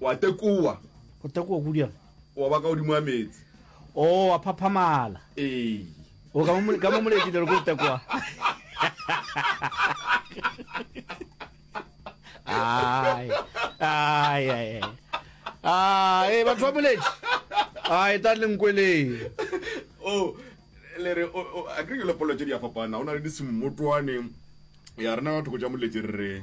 Wa tekoa. O tekoa kudu yana. Wa ba ka godimo ga meetse. O wa phaphamala. Ee. O ka mo ka mo moledi le go tekoa. Ai. Ai ai. Ai, batho ba moledi. Ai, ta leng kwele. Oh, le re a ke le polo tse di a fapana. Ona le disimmotoane. Ya rena batho go ja moledi re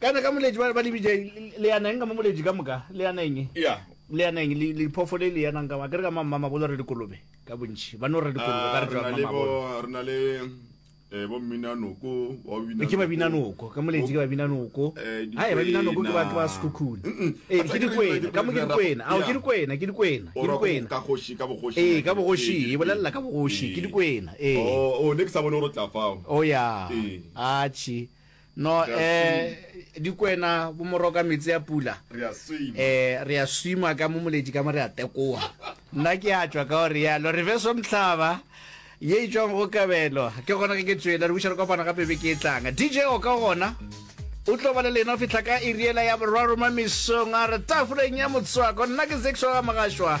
kana ka moleji ba le bj le yana eng ka mo moleji ka moka le yana eng ya le yana eng le le phofo le le yana ka ba ke re ka mamma ma bolo re dikolobe ka bontši ba no re dikolobe ka re tšwa mamma bolo re na le eh bo mina noko wa bina ke ba bina noko ka moleji ke ba bina noko eh, ha ba bina noko ke ba ke ba skukhuni eh ke di kwena ka mo ke di kwena a ke di kwena ke di kwena ke di kwena ka goshi ka bogoshi eh ka bogoshi e bolella ka bogoshi ke di kwena eh oh, oh next abone o re tla fao oh ya a chi No eh dikwena bo moroka metsi a pula eh re ya swima ka mo moletši ka mo re a tekoa nna ke a tšwa ka gore yalo re beso mhlaba ye e tšwang go kabelo ke gona ge ke tswela re buša re kopana gape be ke e tlanga dj o ka gona o tlo ba le lena fitlha ka iriela ya borwaroma mesong a re tafoleng ya motswako nna ke zeksoga mogašwa